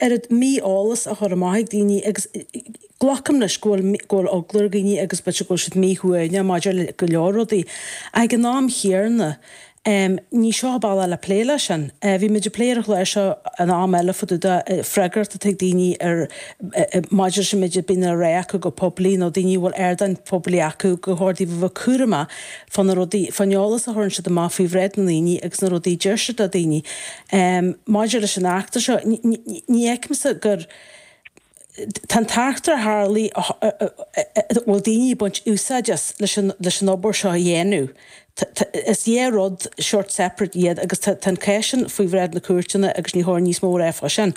oiread mí-eolas a chur amach ag daoine agus glacaim leis go bhfuil go bhfuil eagla ar dhaoine agus b'fhéidir go bhfuil siad mí-shuaimhneach maidir le go leor rudaí ach ag an am chéarna ní seo an bealach le plé leis sin. Bhí muid ag plé ar an chlár seo an am eile fá dtaobh den fhreagracht atá ag daoine ar maidir leis an méid a bhíonn á rá acu go poiblí nó daoine a bhfuil ardáin phoiblí acu gur chóir dóibh a bheith cúramach fá na rudaí fán eolas a chuireann siad amach faoi bhráid na ndaoine agus na rudaí a deir siad le daoine. Ehm, maidir leis an eachtra seo, ní fheicimse gur. Tá an t-eachtra a tharla, a bhfuil daoine ag baint úsáid as leis an obair seo a dhéanamh, is dhá rud sórt separate iad agus tá an cás sin faoi bhráid na cúirteanna agus ní cóir níos mó a rá fá sin.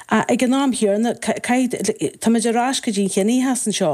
Ach ag an am chéanna, caithfidh, táimid ar ais go dtí an ciníochas anseo.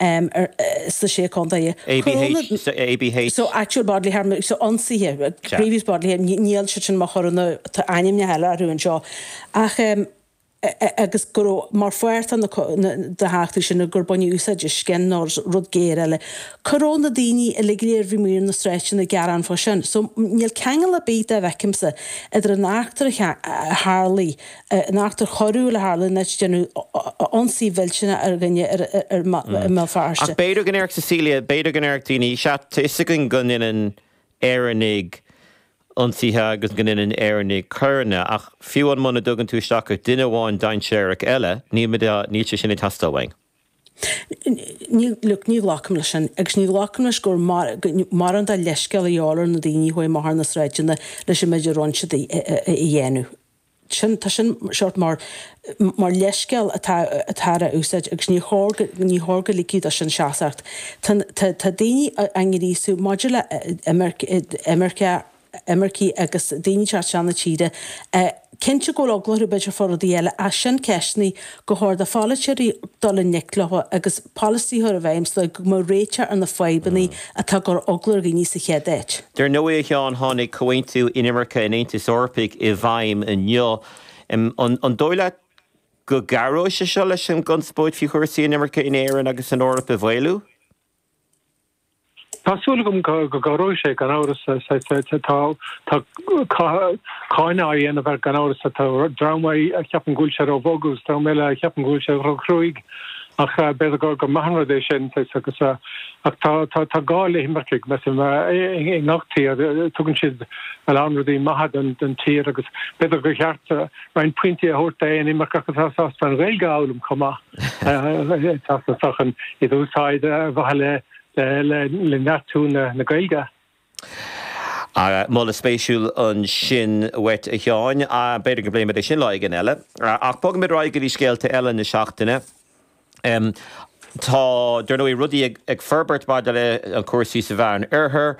um ar sna Sé Contae. ABH, so ABH. So actual bodily harm, so ionsaithe, grievous bodily harm, níl siad sin mar choireanna, tá ainmneacha eile orthu anseo. Ach um agus go raibh mar pháirt de na heachtraí sin gur baineadh úsáid as scin nó as rud géar eile. Cá raibh na daoine uilig go léir a bhí amuigh ar na sráideanna ag gearán fá sin. So níl ceangal ar bith, dá bhfeicimse, idir an eachtra a tharlaigh, an eachtra choiriúil a tharla in áit a ndearnadh ionsaí millteanach ar dhuine i mBéal Feirste. Ach b'fhéidir go ndéarfadh Cecilia, b'fhéidir go ndéarfadh daoine, 'sea, tá 'fhios againn go ndéanann Éireannaigh ionsaithe agus go ndéanann Éireannaigh coireanna, ach fiú amháin muna dtugann tú isteach ach duine amháin dainséarach eile, níl sé sin ag teastáil uainn. Look, ní ghlacaim leis sin, agus ní ghlacaim leis gur maith an rud é leithscéal a ghabháil ar na daoine a chuaigh amach ar na sráideanna leis an méid a rinne siad a dhéanamh. sin, tá sin sórt mar, mar leithscéal atá, atá á úsáid agus níor chóir go, níor chóir go ligfí do sin seasacht. Tá, tá, tá daoine á ngríosú maidir le imirce, imirce, imircigh agus daoine ag teacht chun na tíre. Cinnte go bhfuil eagla orthu, b'fhéidir fá rudaí eile ach sin ceisteanna. gur chóir do pholaiteoirí dul i ngleic leo agus polasaithe a bheith i bhfeidhm sa dóigh go mbeadh réiteach ar na fadhbanna atá ag cur eagla ar dhaoine sa chéad áit. Dar ndóigh, a Sheáin, tháinig comhaontú inimirce an Aontais Eorpaigh i bhfeidhm inniu. An dóigh leat go gcabhróidh sé seo leis an gconspóid faoi chúrsaí inimirce in Éirinn agus san Eoraip a mhaolú? Tá súil agam go gcabhróidh sé, gan amhras. Tá cáineadh á dhéanamh air, gan amhras. Tá dream a cheapann go bhfuil sé róbhog agus dream eile a cheapann go bhfuil sé róchruaidh. Ach b'fhéidir gur maith an rud é sin. Ach tá gá le himircigh, measaim, i ngach tír. Tugann siad a lán rudaí maithe don tír agus b'fhéidir gur cheart roinnt pointí a thabhairt d'aon imirceach atá sásta an Ghaeilge a fhoghlaim chomh maith. Teacht na sochn in úsáid ar mhaithe le le neartú na Gaeilge. Moladh spéisiúil ansin uait, a Sheáin. B'fhéidir go bpléifimid é sin lá éigin eile. Ach bogfaimid ar aghaidh go dtí scéalta eile na seachtaine. Tá, dar ndóigh, rudaí ag forbairt maidir le cúrsaí sa Mheán-Oirthear,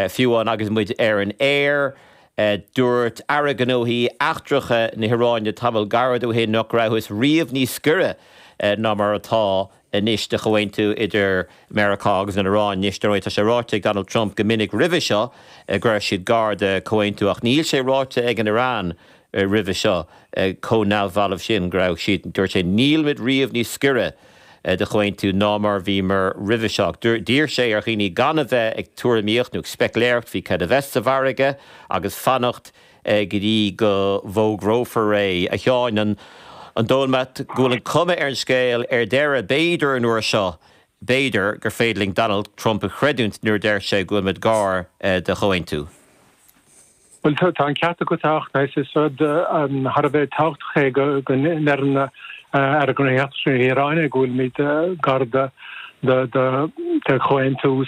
fiú amháin agus muid ar an aer. Dúirt Aire Gnóthaí Eachtracha na hIaráine tamall gairid ó shin nach rabhthas riamh níos gaire ná mar atá anois do chomhaontú idir Meiriceá agus an Iaráin. Anois, dar ndóigh, tá sé ráite ag Donald Trump go minic roimhe seo go raibh siad gar de chomhaontú, ach níl sé ráite ag an Iaráin roimhe seo chomh neamhbhalbh sin go raibh siad. Dúirt sé, Nílimid riamh níos gaire. de chomhaontú ná mar a bhíomar roimhe seo. D'iarr sé ar dhaoine gan a bheith ag tuairimíocht nó ag specléireacht faoi cad a bheas sa mhargadh agus fanacht go dtí go bhfógrófar é. A Sheáin, an dóigh leat go bhfuil an chuma ar an scéal ar deireadh, b'fhéidir an uair seo, b'fhéidir, gur féidir linn Donald Trump a chreidiúint nuair a deir sé go bhfuilimid gar do chomhaontú? Bhuel, tá an ceart agat, a Fhachtna. Is rud thar a bheith tábhachtach é go ndeireann Aire Gnóthaí Eachtracha na hIaráine go bhfuilimid gar do chomhaontú.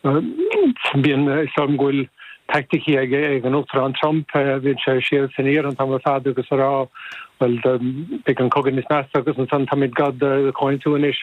Bíonn a fhios agam go bhfuil teaicticí ag an Uachtarán Trump, bíonn sé ag siúl san Iaráin an t-am ar fad agus ag rá, bhuel, beidh an cogadh níos measa agus ansan táimid gar do chomhaontú anois.